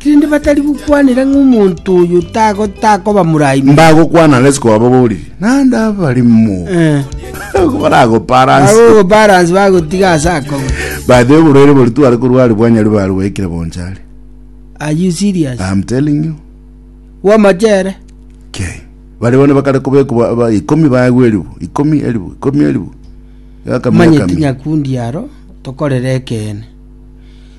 Rende batari gokwanera ng'a omonto oyo takoba morai mono. Mbagokwana ang'e ase kobababoririe, naende abarimo baragoparanse. Bagogoparanse bagotiga ase akobe. By the way, oborwaire bori tware korwa are bwanyari bare bwaikire boncha are. Are you serious? I'm telling you. Bw'amachere. Okay. Bari bono bakare kobekwa ba- ikomi baegwa eribu, ikomi eribu, ikomi eribu. Yakami, Manye yakami. tinyakundi aro tokorere ekeene.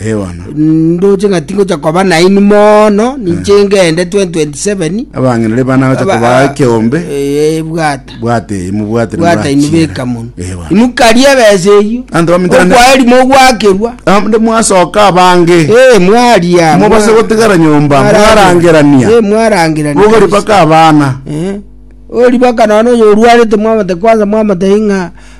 Ee bono. Ndoche ng'a tingocha koba nainwe mono, ninche ngende 2027. Abang'inire bane agocha Aba- kobaa ekeombe. Eh, bwata. Bwate eyi mobwate Bwata inu beka mono. Ee bono. Inu karia ebesa eyio. Anto bamitera ne- Okwaeri mogwakerwa. Ah, nde mwasoka abange. Eh, mwaria. Mobase mwa- gotigara nyomba, mwarangira- mwarangerania. Eh, mwarangerania. Bogori kabisa. baka abana. Eh. Ori baka nono oyo orwarete mwamate kwanza mwamate ing'a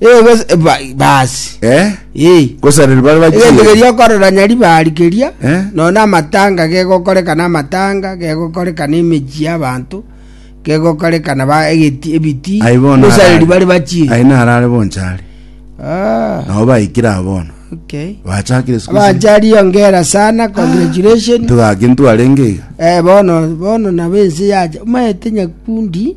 Eh, gose- eh, ba- basi Eh? Eh. Gosaneri bare egento bachire. keria okorora nyaribari keria Eh? nona amatanga gegokorekana amatanga gegokorekana emechi y'abanto gegokorekana ba egeti ebiti Aye bono gosareri arare. bari bachire Aye narare bonchari. Ah, Nabo baikire abono. okay Bachakire siku isi. abanchari ongera sana congratulation Tugaki ntwarenge iga. eh bono bono nabo ense yacha maete nyakundi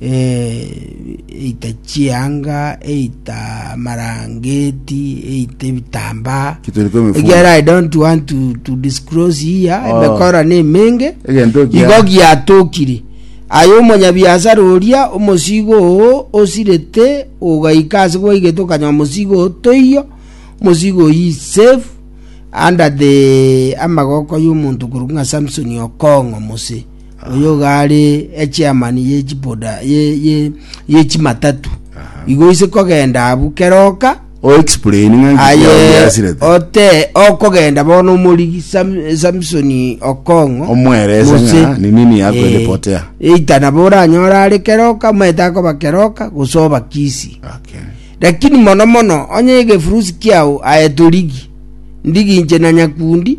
eita chianga, eita amarangeti, eita ebitambaa. Kituri kwa emifungo. Ekiagera I don't want to, to disclose here, Oh. emekora na emenge, Egento ekia- igo giatokire. Aye omonyabiasara oria, omosigo oo osirete, ogaika ase gwaigete okanywa omosigo oo toiyo, omosigo oyio is safe, under the amagoko y'omonto korokwa ng'a Samson Okong'o mose. oyogare echairman ye chiboda ye ye ye chimatatu igo ise kogenda abu keroka o explain ng'a nki aye yasirete ote okogenda bono omori Sam- Samson Okong'o omwerese Mose. ng'a ni nini yakorepotea eita nabo oranyora are keroka omanyete akoba keroka gose obakisi okay lakini mono mono onye egefurusi kiao aye torigi ndigi inche na nyakundi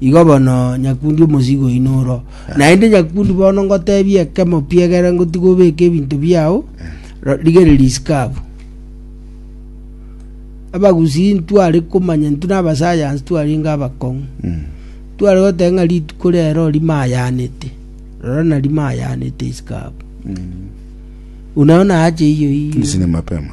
Igo bono nyakundi omosigo oino oro. Naende nyakundi bono ngotebia ekemo piegere ngotiga obeke ebinto biao, ro- rigereria isiko abwo. Abagusii ntware komanya intwe na abasayansi twarenge abakong'u. Tware goteba ng'a rituko rero rimayanete, rora na rimayanete isiko abwo. Buna bono ache iyo iyo. Tindisine mapema.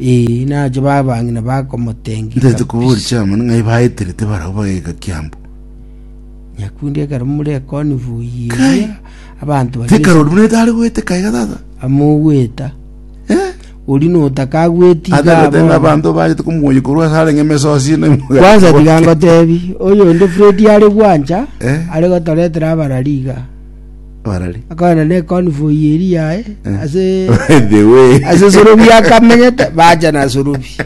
Ee, nache babang'ina bakomoteng'ia Ntaete koba ore kabisa. chairman ng'ai baeterete barabwo bageka kiambu. Nyakundi ekero more ekonifu Kai. iria abanto bari Tekarori buna etare goete kaiga tata. amogweta Eh? ori notakagweti Ata gotenga abanto bagete komuoye korwa ase arenge mesosi ne kwanza tiga ngotebi oyo onde Fred are gwancha Eh. are gotoretera abarariga Barari. akogenda ne convoy eri yaye ase By the way. ase sorobi akamenyete bacha na sorobi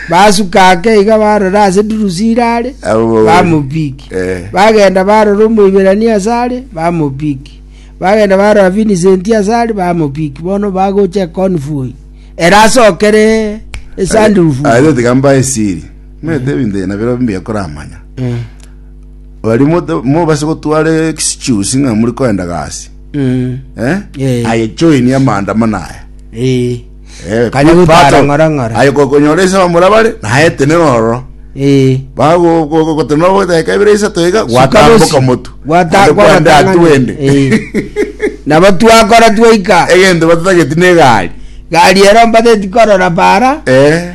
basuka ake iga barora ase dirusi irare Abo baweri. bamopiki Eh. bagenda barora omoiberani asare bamopiki bagenda barora vincent asare bamopiki bono bagocha econvoy erasokere esandufu Aye tiga mbae siri. Mwete ebinto na biro mbi ekoramanya. Baria mote- mobase gotwara excuse ng'a muri koenda gasi. Mm. Eh? Eh. Aye join amaandamano aya. Eh. Eh, Kanya part gotara of- ng'ora ng'ora. Aye kokonyora ise bamorabare, naye tenena ororo. Eh. bagogotema bodeka ebere isato iga gwatamboka motu Gwata- Ande kwende gwatang'ana. atu wende Eh. nabo twakora twaika egento batatageti na egari gari ero mbateti korora para Eh,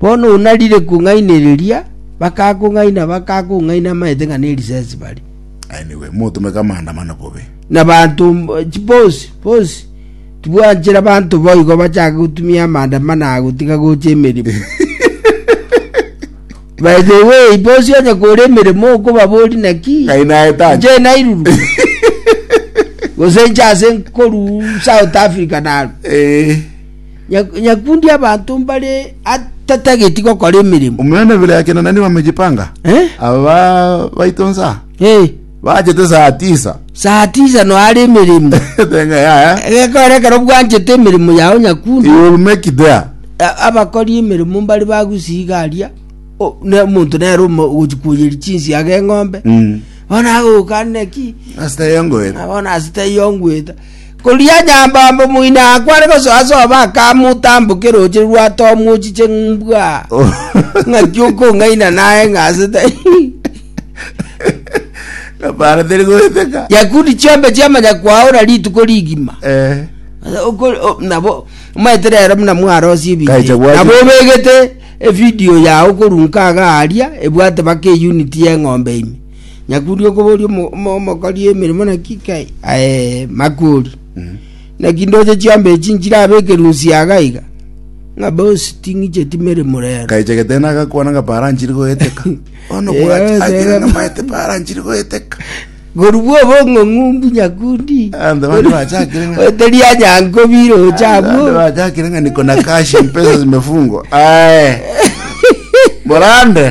Bono onarire kong'ainereria, bakakong'aina, bakakong'aina amaete ng'a nerisesi bare. Aye nigo motomeke amaandamano bobe. Na banto mb- ch- bonsi bonsi tibwanchera banto boigo bachake gotumia amaandamano aya gotiga gocha emeremo by the way bonsi onye kore emeremo okobabori naki Ngai naetanye. nche nairuru gose nche ase nkoru south africa naru Eh. Nyakundi abanto mbare atatageti gokora emeremo. Omonene bire yake na nani bamejipanga? Eh? Aba baito nsa Eh, bachete saa tisa. saa tisa noare emeremo. Tenga yaya. Gekora ekero bwanchete emeremo yao nyakundi. You will make it there. A- abakori emeremo mbare bagusiga aria O- ne omonto nere ogochikuoyeri chinsiaga eng'ombe Mm. bono agoka neki Asita yengoera. bono asita eyongweta Koria nyambombe moino akwo are gosoa sobo akamotambokia roche rwa tomu ochiche mbwa. Ng'aki okong'aina naye ng'asete. Ngapara teri goeteka. Yakudi chiombe chiamanya kwaora rituko rigima. Eh. Okori- o- nabo maete rero muna mwarosie Kaicha ebinto gwachi- nabo obegete evidio yao korunka agaria ebwate baka eyuniti y'eng'ombe ime Nyakuri okoboria omo- omo- omokori emeremo naki kai? Aye, makori. Naki ndoche chiambe echi nchirabe ekerunsi yaga iga? Ng'a bosi ting'icheti meremo rero. Nkaichegete na agakwana ng'a para nchiri goeteka. Bono Eh, bwacha eh, agere eh. namaete para nchiri goeteka. Korubwa obong'ong'u mbu nyakundi. Ande bande bachakire ng'a- Oteria nyanko bire Ande ochabwo. bachakire ng'a niko na cash mpesa zimefungwa. Aye. Borande.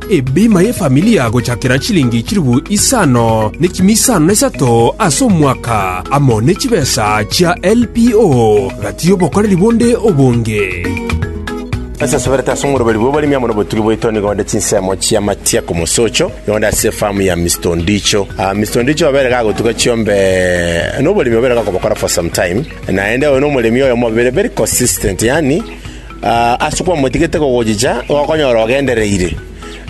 Ebima y'efamilia gochakera chilingi chilifu isano nekimi isano na isato ase omwaka, amo ne chibesa chia LPO, gati y'obokoreri bonde obonge. Ase asoberete ase omoroberi bwa oboremi amo nobotugi bwaito nigo onde chinsemo chia matia komosocho nigo onde ase efamu ya Mister Ondicho. Ah, Mister Ondicho obere gagotuga chiombe noboremi obere gakobokora for some time, naende oyo nomoremi oyomo obere very consistent, yaani Ase kwamotigete kogochicha gokonyora ogendereire.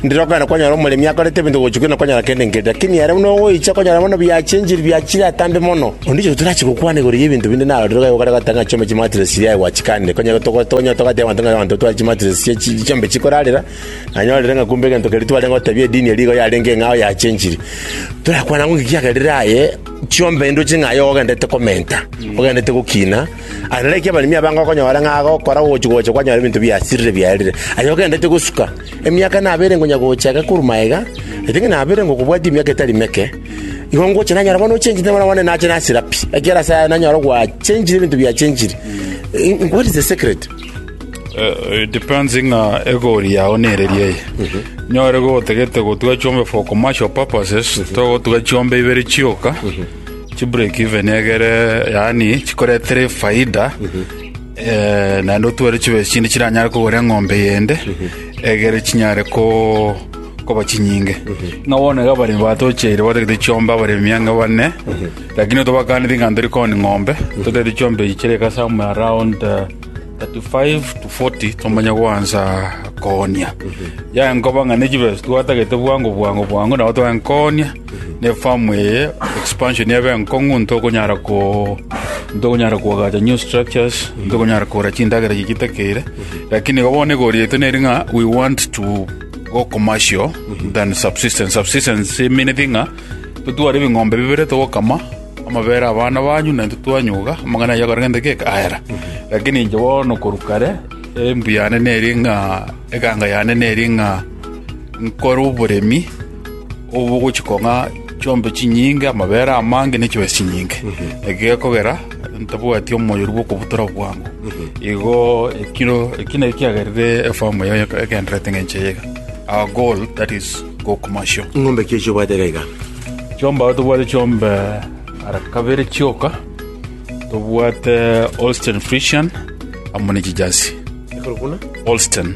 Ndirokana kwanyora omoremi akorete ebinto gochia kere nokonyora kende nkeri, lakini ere buna ogoicha konyora bono biachenchiri biachire atambe mono. Onde oyo torachi gokwana igoro y'ebinto binde narorire iga gokare goteba ng'a chiombe chimatiresi chiaye gwachikande. Konya togo tonya togateba abanto ng'a abanto tware chimatiresi chia chi chiombe chikorarera, nanyorire ng'a kumbe egento keria twarenge gotebia edini eria igo yarenge eng'ao yachenchiri. Torakwana ng'o ng'iki kiagerire aye, chiombe indoche ng'a aye ogenderete komenta, ogenderete gokina. Aye nareki abaremi abange okonyora ng'a agokora gochi-gocha kwanyora ebinto biasirire biarire, aye ogenderete gosuka. Emiaka nabere ngonya gocha iga korwa magega, nainche ng'a nabere ngokobwatia emiaka etari meke, igo ngocha nanyora bono ochenchete bono bono nache nasira pi, ekiagera ase aya nanyora gwachenchire ebinto biachenchire. Eh, What is the secret? Eh, it depends ng'a egori yao nereria eye nyore gotagete gotuga chiombe for commercial purposes togotuga chiombe ibere chioka Chibreak even egere yaani chikoretera efaida eh, naende otware chibe chinde chiranyare kogora eng'ombe yende egere chinyare ko koba chinyinge ng'a bono iga abaremi batocheire batagete chiombe abaremi ang'e bane lakini tobakaneti ng'a ntori koni ng'ombe totagete chiombe echi chire eka somewhere around eh, 35 to 40 tomanya gwansa koonia yaenkoba ng'a nechibe twatagete bwango bwango bwango nabo twaenkonia Nefamu eye expansion ebe nkong'u ntokonyara ko ntokonyara koagacha new structures ntokonyara kogora chindagera chiri chitakeire lakini igo bono egorietwe neri ng'a we want to go commercial than subsistence subsistence emineti ng'a totware ebing'ombe bibere togokama amabere abana banyu naintwe twanyuga amang'ana ayio akorenge nde geka ayera lakini inche bono korwa kare embu yane neri ng'a eganga yane neri ng'a nkore oboremi obogochika ng'a chiombe chinyinge, amabere amange, ne chibesa chinyinge. Eki gekogera ntabwati omoyoru bw'okobutora bwango. Igo ekiro eki naki kiagerire efamu eye egendererete ng'encho eye iga. Our goal that is go commercial. Ng'ombe ki echi obwate iga iga? Chiombe aba tobwate chiombe ara kabere chioka, tobwate Holstein Friesian amo ne chijersey. Ekero buna? Holstein.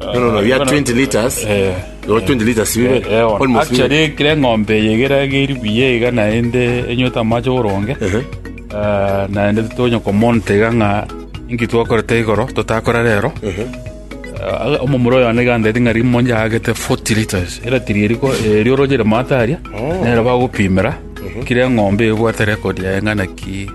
No, no, no, you are 20 liters. Eh, You are 20 liters, you eh, eh, will- almost you will- actually kire ng'ombe yegera geri buya iga naende enyota amache oboronge Ehe. Eh, naende tonya komonta iga ng'a inki twakorete igoro totakora rero Ehe. Eh, omomura oyo ane gandeti ng'a rimo njagete 40 liters era tiri eriko eri orogere mataria nero bagopimera kire ng'ombe ebwate rekodi yaye ng'a naki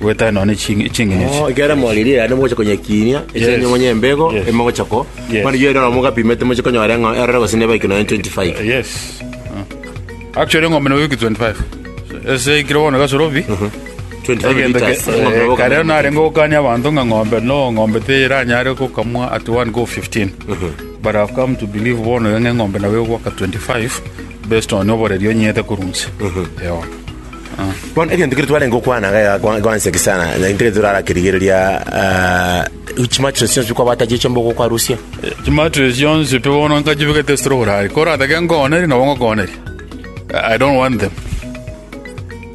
Gwetana nonya chin- chingencho chi- Oh, ekero moririe yaani mogocha konyekinia Yes. esenye monye embego Yes. emogocha ko Yes. mani yero na mogapimete moche konyora ng'a erore gose neba ikino 25 yes Ah. actually eng'ombe nabo eki 25 ese ikire bono gasorobi 25 egento liters eng'ombe nabo kare kamera. narenge gokania abanto ng'a ng'ombe no ng'ombe teranyare gokamwa at one go 15 but i've come to believe bono ng'a eng'ombe nabo egwaka 25 based on oboreri onyete korunse Ewa. Bono egento keria twarenge gokwana iga egakwa- eganseki sana, na intwe torara kerigereria ah, chimatress chionsi chikwabata chiche mbogo okwarusia. chimatress chionsi pi bono nkachibegete ase ororari koratake nkoonerie nabo ngokooneria i don't want them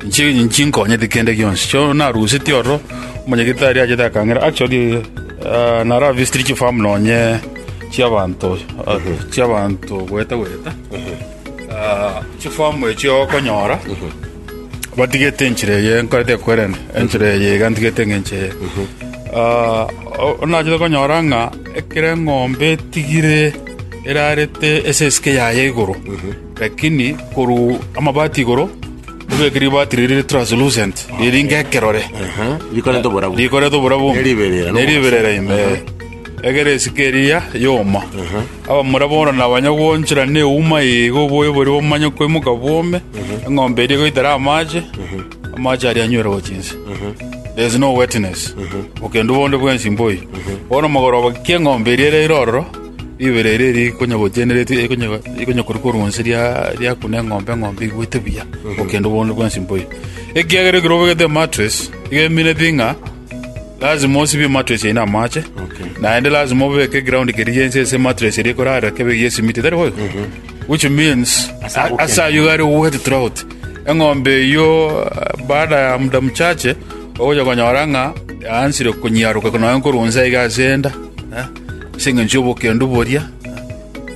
Nchi- nchinkonyeti kende gionsi so naruseti ororo omonyagitari achete akang'ira actually ah, nara visitiri chifamu nonye chiabanto ah, chiabanto goeta goeta Chifomu echio okonyora batigete enchera eye nkorete koerenda enchera eye iga ntigete ng'enche eye Ah, o- onachete konyora ng'a ekero eng'ombe etigire erarete ase esike yaye igoro lakini koru amabati igoro ebeke ribati riri riri translucent riringa ekerore rikorete oborabu rikorete oborabu Neriberera, no? neriberera ime Egera esiko eria yoma. Abamura bono nabanya gwoonchora neuma eye iga oboyo boria bomanye koimoka bwome, eng'ombe eria egoitera amache, amache aria anywere gochia inse. There is no wetness, bokendu bonde bwensi mboiyo. Bono mogoroba ki eng'ombe eria eraire ororo, ribera eria eria ikonya gotienera ikonya ikonya korwa korwa inse ria- riakuna eng'ombe, eng'ombe igwete buya, bokendu bonde bwensi mboiyo. Ekiagera ekero obegete emattress, iga emineti ng'a. Lasima osibie matress yaino amache, naende lasima obeke eground keria gionsi ase matress eria ekorarera kebe eyio esimiti, tari boigo? Which means, a- agokenda. ase ayio iga are ogoeta throughout. Eng'ombe eyio eh, baada ya muda mchache, ogocha konyora ng'a yaansire konyiaroka nonya nkorwa nse iga ase enda, eh, ase eng'encho y'obokendu boria,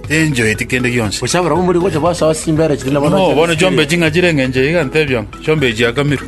tenjoeti kende gionsi. Gocha barabwo mbori gocha basoa chimbere chiri nabo No, bono chiombe ching'a chire eng'encho iga ntebia ng'a chiombe chiakamirwe.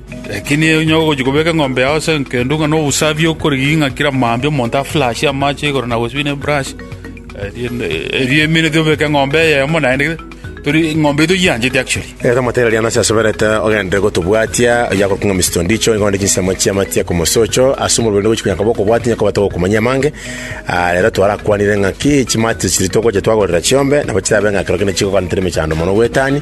Lakini onye ogochia kobeka eng'ombe yao ase enkendo ng'a nobosabi okorigia ng'a kera mambia omonto aflashe amache igoro na gosibia neburashi, erinde erio emenete obeke eng'ombe eyemo naende gete, tori eng'ombe eyio toyiancheti actually. Ere tomoteera riana ase asoberete ogenderere gotobwatia, oyio akorokwa ng'a Mister Ondicho, igo onde chinsemo chia amatia komosocho ase omorweri onde gochia konyaka bokobwati onye koba togokumanyia amange. Ah, rero twarakwanire ng'a ki chimati chiria togocha twagorera chiombe nabo chirabe ng'a ekero kende chigoganetera emechando mono goetania,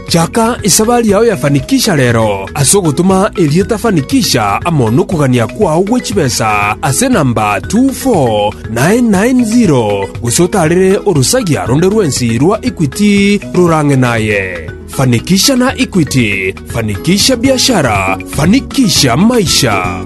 Chaka esabari yao ya Fanikisha rero, ase ogotoma erieta Fanikisha amo nokogania kwao gwe chibesa ase enamba 24990, gose otaarere orosagia ronde rwensi rwa Equity rorang'e naye. Fanikisha na Equity, fanikisha biashara, fanikisha maisha.